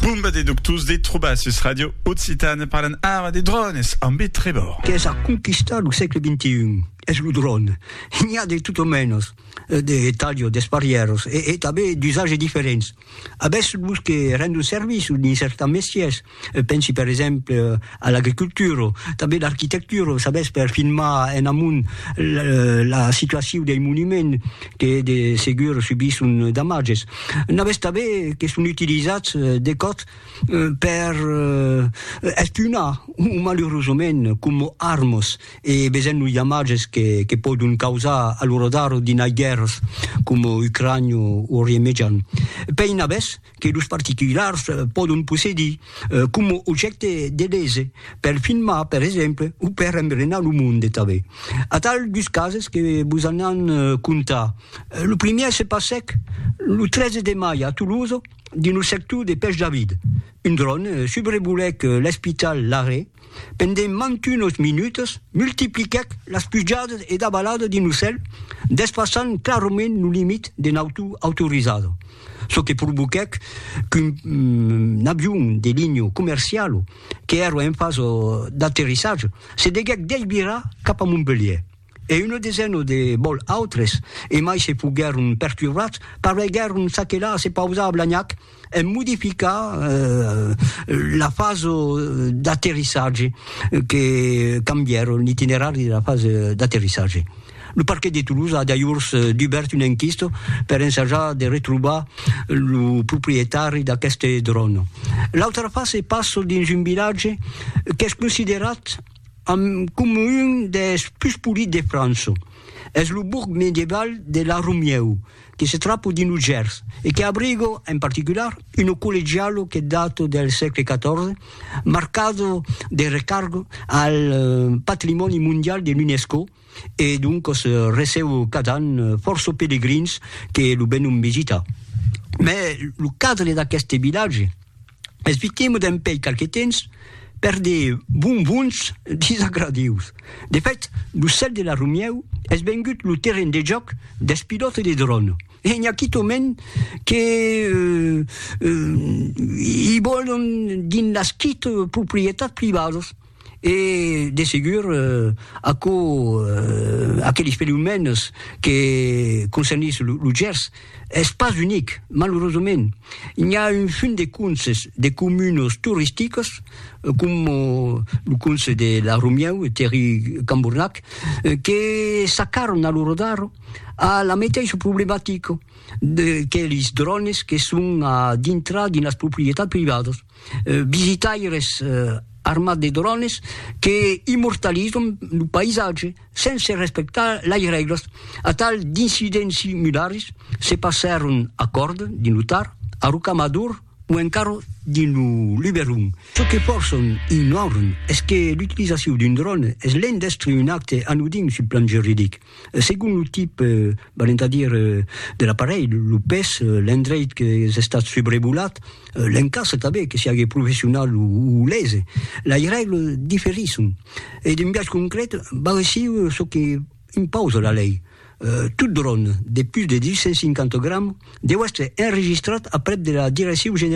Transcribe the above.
Bomba de doctors de trobar sus Radio Occitane parlan ara de drònes ambe Trevor. Qu'es a conquistar lo sègle xxi es lo dròne. N'i a de tot o mènos, de talho, d'esparièros e tanben d'usatges diferents. Avètz los que rendon servici dins cèrta mestiers, Pensi per exemple a l'agricultura, tanben l'arquitectura, sabètz, per filmar en amont la situacion dei monuments que de segur subisson damatges. N'avètz tanben que son utilizats de còps per espionar, o malurosament coma armas, e vesèm los damatges que pòdon causar a lo radar dinai guèrras coma Ucrània o Orient Mejan. Pei n'avètz? que los particulars pòdon possedir coma objècte de lese, per filmar, per exemple, o per embrenar lo monde tanben. Atal dus cases que vos anam contar. Lo primièr se passèc lo 13 de mai a Tolosa, dins lo sector de Pèch David. Un dròn subrevolèc l'espital Larrey. Pendent mantunos minutas, multipliquèc las pujadas e davalada d'un ocèl, despassant clarament lo limit de nauta autorizada, çò que provoquèc qu'un avion de linha comerciala qu'èra en fasa d'aterrissatge se deguèc desvirar cap a Montpelhièr e una desena de vòls autres, emai se foguèron perturbats, pareguèron s'aquelar a se pausar a Blagnac, en modificar la fasa d'aterrissatge, que cambièr l'itinerari de la fasa d'aterrissatge. Lo Parquet de Toulouse a dajors dubèrt una enquista per ensajar de retrobar lo proprietari d'aqueste dròn. L'autra fasa se passa dins un vilatge qu'es considerat coma un dels pus polits de França. Es lo bourg medieval de La Romieu, que se trapo dins lo Gers e que abrigo en particular uno collegialo que dato del sègle XIV, marcado de recargo al patrimòni mondial de l'UNESCO e doncos recebo cada an fòrça pelegrins que lo venon visitar. Mès lo cadre d'aqueste vilatge. Esvitemo dempèi qualque temps per de bonbons disagradius. De fèt, lo cèl de la Romièu es vengut lo terren de jòc dels pilòtes de dròn e n'i a quitòment que i vòlon dins las quite proprietats privadas. E, de segur, aquò, aqueles fenomèns que concernís lo Gers, es pas unic, malurosament. N'i a un fum de conses, de comunas toristicas, coma lo conse de La Romieu, Terri Cambornac, que s'acarran a lo rodar a la meteissa problematica de que lis drònes que son a dintrar dins las proprietats privadas. visitaires armats de drones que immortalizan lo païsatge sense respectar las règlas. Atal d'incidents similars se passèron a Còrd, dins lo Tar, a Rocamador o encara dins lo Luberon. Çò que fòrçan ignorant es que l'utilizacion d'un dròn es l'en d'èstre un acte anodin sul plan juridic. Segon lo tip, valent a dire, de l'aparelh, lo pes, l'endreit qu'es estat subrevolat, l'encastre tanben, que siague professional o lese, lei règle diferisson e d'un biais concret val aissiu çò que impausa la lei, tot dròn de pus de 250 grams deu èstre enregistrat aprèp de la Direccion Generala de la Santat Publica.